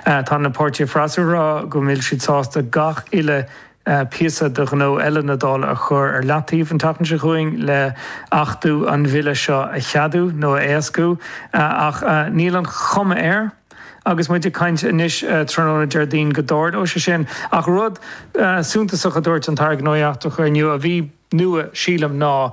Tá na páirtithe freasúra ag rá go bhfuil siad sásta gach uile phíosa de ghnó eile na Dála a chur ar leataobh an tseachtain seo chugainn le hachtú an bhille seo a cheadú nó a éascú ach níl an chuma air agus muid ag caint anois tráthnóna Déardaoin go dtarlóidh sé sin. Ach rud suntasach a dúirt an tAire Gnóthaí Eachtracha inniu a bhí. nua, sílim, ná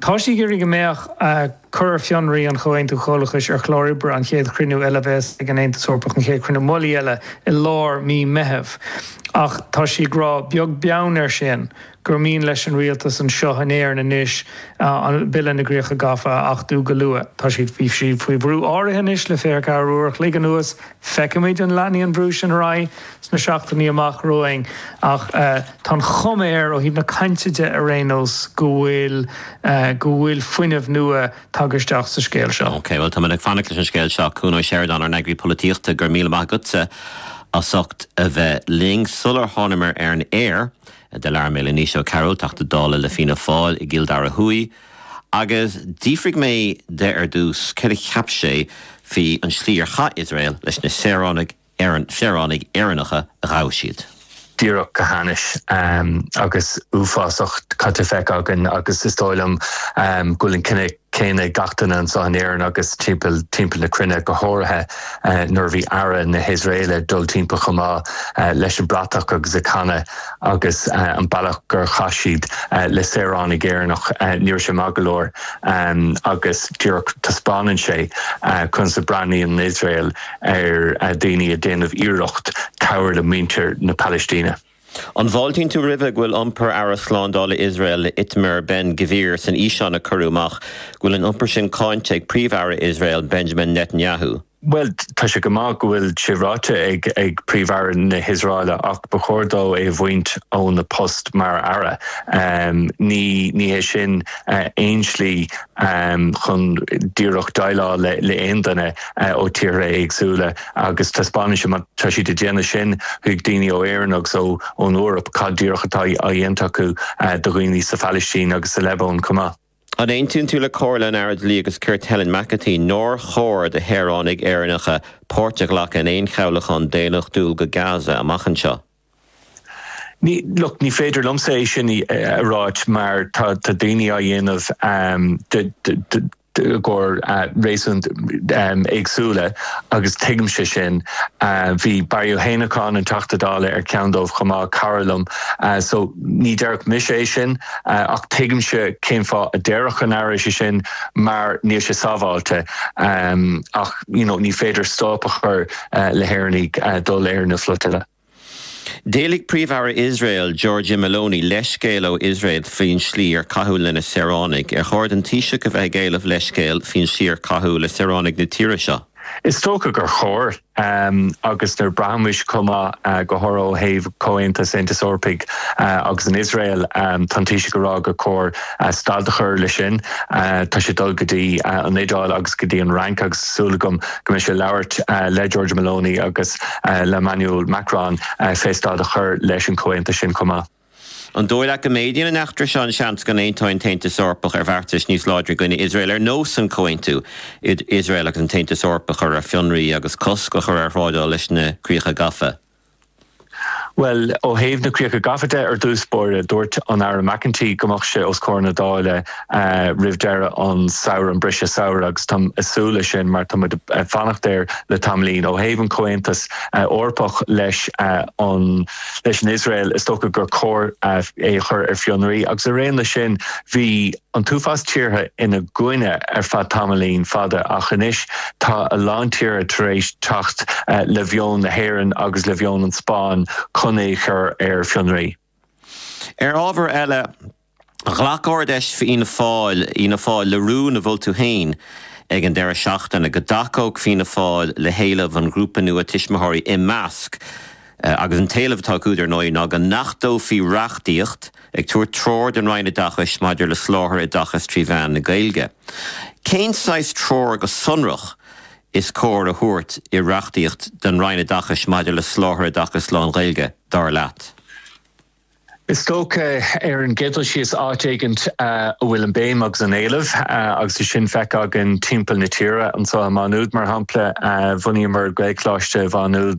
tá sí ag iarraidh go mbeadh cur ar fionraí an Chomhaontú Chomhlachais ar chlár oibre an chéad chruinniú eile a bheas ag an Aontas Eorpach, an chéad chruinniú mullaigh eile i lár mí Meitheamh. Ach tá sí ag rá, beag beann air sin, gur mian leis an rialtas anseo in Éirinn anois an Bille na gCríocha Gafa a achtú go luath. Tá siad faoi bhrú áirithe anois le fiche ceathair uair a chloig anuas. Feicfimid an leanfaidh an brú sin ar aghaidh sna seachtainí amach romhainn ach tá an chuma air, ó thaobh na cainte de ar aon nós, go bhfuil go bhfuil fuinneamh nua tagtha isteach sa scéal seo. OK, bhuel, táimid ag fanacht leis an scéal seo. Cuan Ó Seireadáin, ár n-eagraí polaitíochta, go raibh míle maith agatsa as ucht a bheith linn. Sular thánamar ar an aer, do labhair mé le Naoise Ó Cearúil, Teachta Dála le Fianna Fáil i gCill Dara Thuaidh, Agus d'fhiafraigh mé de ar dtús céard a cheap sé faoin tslí ar chaith Iosrael leis na saoránaigh, saoránaigh Éireannacha a ghabh siad. díreach go hainnis agus uafásach cad atá feicthe againn agus is dóigh liom go bhfuil an cinneadh céanna ag gach duine anseo in Éirinn agus timpeall, timpeall na cruinne, go háirithe nuair a bhí Aire na hIosraeile ag dul timpeall chomh maith leis an bratach agus ag canadh. agus an bealach gur chaith siad le saoránaigh Éireannach, ní raibh sé maith go leor, agus díreach taispeánann sé conas a breathnaíonn an Iosrael ar dhaoine ag déanamh iarracht cabhair le muintir na Palaistíne. An bhfáiltíonn tú roimhe go bhfuil iompar Aire Slándála Iosrael Itamar Ben Gvir san fhíseán a cuireadh amach, go bhfuil an iompar sin cáinte ag Príomh-Aire Iosrael Benjamin Netanyahu? Bhuel, tá sé go maith go bhfuil sé ráite ag Príomh-Aire na hIosraeile ach ba chóir dó é a bhaint óna post mar aire. Ní hé sin aon slí chun díreach déileáil le aon duine ó tíortha éagsúla agus taispeánann sé, má tá siad ag déanamh sin chuig daoine ó Éirinn agus ón Eoraip, cad díreach atá á dhéanta acu do dhaoine sa Phalaistín agus sa Liobáin chomh maith. An aontaíonn tú le comhairle an Aire Dlí agus Cirt Helen McEntee nár chóir do shaoránaigh Éireannacha páirt a ghlacadh in aon chabhlachán daonnachtúil go Gaza amach anseo? Ní, look, ní féidir liomsa é sin a ráit mar tá daoine á dhéanamh i gcomhair réasúnta éagsúla agus tuigimse sin. Bhí Barry Ó hÉanacháin, an Teachta Dála, ar cheann dóibh chomh maith, cara liom, so ní déarfadh mise é sin. ach tuigimse cén fáth a déarfadh an tAire é sin mar níl sé sábháilte ach you know ní féidir stad a chur le hÉireannaigh dul ar na flotillas. D'éiligh Príomh-Aire Iosrael, Giorgia Meloni, leithscéal ó Iosrael faoin slí ar caitheadh lena saoránaigh. Ar chóir don Taoiseach a bheith ag éileamh leithscéil faoin slí ar caitheadh le saoránaigh na tíre seo? Is dócha gur chóir. agus nuair a braithimís chomh maith, go háirithe ó thaobh Comhaontas Aontas Eorpaigh agus an Iosrael, tá an Taoiseach ag rá gur chóir stad a chur leis sin, tá sé ag dul go dtí an Iodáil agus go dtí an Fhrainc agus tá súil agam go mbeidh sé ag labhairt le Giorgia Meloni agus le Emmanuel Macron fé stad a chur leis an Comhaontas sin chomh maith. An dóigh leat go méadaíonn an t-eachtra seo an seans go n-aontóidh an tAontas Eorpach ar bheartas níos láidre i gcoinne Iosrael ar nós an comhaontú Iosrael agus an tAontas Eorpach a chur ar fionraí agus cosc a chur ar thrádáil leis na críocha gafa? Bhuel, ó thaobh na críocha gafa de, ar dtús báire, dúirt an tAire McEntee go mbeadh sé os comhair na Dála roimh deireadh an samhradh, an briseadh samhraidh, agus táim ag súil leis sin mar táimid ag fanacht air le tamaillín. Ó thaobh an Comhaontas Eorpach leis an leis an Iosrael, is dócha gur cóir é a chur ar fionraí, agus araon leis sin, bhí an t-uafás tíortha ina gcoinne ar feadh tamaillín fada, ach anois tá a lán tíortha tar éis teacht le mheon na hÉireann agus le mheon an Spáinn chun é a chur ar fionraí. Ar ábhar eile, ghlac Ard-Fheis Fianna Fáil, Fhianna Fáil le rún a mhol tú féin ag an deireadh seachtaine, go dtacódh Fianna Fáil le héileamh an ghrúpa nua tuismitheoirí Imeasc, agus an t-éileamh atá acu, dar ndóigh, ná go n-achtófaí reachtaíocht ag tabhairt treoir don Roinn Oideachais maidir le soláthar oideachais trí mheán na Gaeilge. Cén saghas treoir go sonrach is cóir a thabhairt i reachtaíocht don Roinn Oideachais maidir le soláthar oideachais lán-Ghaeilge? dar leat? Is dócha ar an gcéad dul síos áit éigint a bhfuil an béim agus an éileamh agus é sin feicthe againn timpeall na tíre, anseo i Má Nuad mar shampla bhunaíomar Gaelcholáiste Mhá Nuad